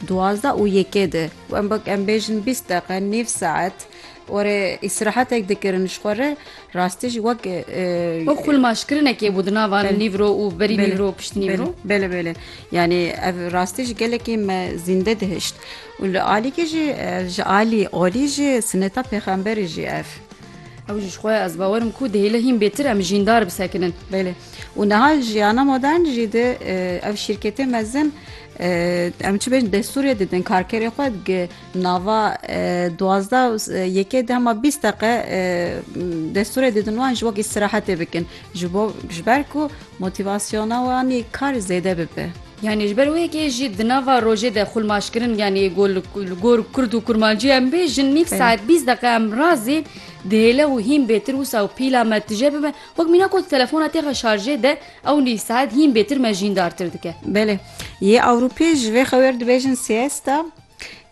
Duwazdeh û yekê di wembek em bêjin bîst deqe nîv saet warê îstirahetek dikirin ji xwe re rastî jî wek Wek xulmaşkirinekê bû di nava nîvro û berî nîvro pişt nîvro. Bele bele yanî ev rastî jî gelekî me zînde dihişt û li alîkê jî ji alî olî jî sineta pêxemberî jî ev. Ew jî ji xwe ez bawer im ku dihêle hîn bêtir em jîndar bisekinin. Bele û niha jiyana modern jî di ev şîrketê mezin Em çi bêjin destûrê didin karkerê xwe gi nava duwazdeh yekê de hema bîst deqe destûrê didin wan ji wek îstirahetê bikin ji bo ji ber ku motivasyona wanî kar zêde bibe. Yanî ji ber wê yekê jî di nava rojê de xulmaşkirin yanî got li gor kurd û kurmancî em bêjin nîv saet bîst deqe em razê dihêle û hîn bêtir wisa û pîla me tije bibe wek mîna ku telefona têxe şarjê de Ew nîv saet hîn bêtir me jîndartir dike. Belê. Yê Ewropî ji vê xewer dibêjin siesta.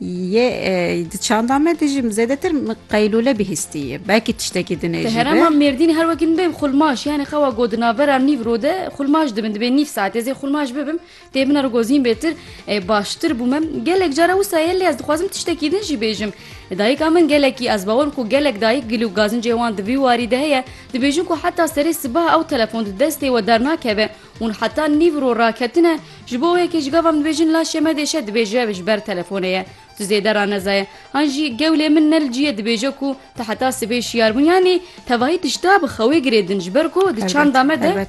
Yê di çanda me de jî zêdetir qeylûle bihîstî ye. Belkî tiştekî din ê jî be. Di herêma Mêrdînê her wekî min bêm xulmaş, yanî xewa got di navbera nîv rode xulmaş dibin. Dibê nîv saetê zê xulmaş bibim. Tê min rgozîn bêtir ê baştir bû min gelek cara wisa ye lê ez dixwazim tiştekî din jî bêjim. Dayika min gelekî ez bawerim ku gelek dayik gil û gazincê wan di vî warî de heye dibêjin ku heta serê sibaha ew telefon di destê we dernakeve hûn heta nîv rû raketine ji bo wê yekê ji gava min dibêjin la şeme dêşe dibêje ji ber telefonê ye Tu zêde raneza ye. Han jî gewlê min ne li cî ye dibêje ku tu heta sibê şiyar bû yanî tevahî tişta bi xewê girêdin ji ber ku di çanda me de Elbet.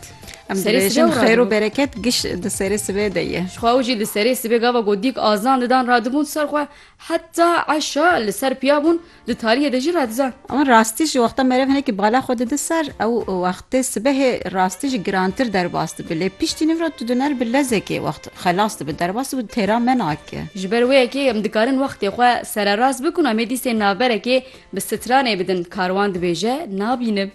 Em Serê dibêjin sibê û xeyr û radibû. bereket giş di serê sibê de ye. Jixwe ew jî li serê sibê gava ku dîk azan didan radibûn ser xwe heta eşa li ser piya bûn Di tariyê de jî radizan. Ewan rastî ji wexta merev hinekî bala xwe dide ser, ew wextê sibehê rastî jî girantir derbas dibe. Lê piştî niv re tu diner bi lezekê wext xelas dibe, derbas dibe û têra me nake. Ji ber wê yekê em dikarin wextê xwe sererast bikin û em ê dîsên navberekê bi stranê bidin. Karwan dibêje, Nabînim.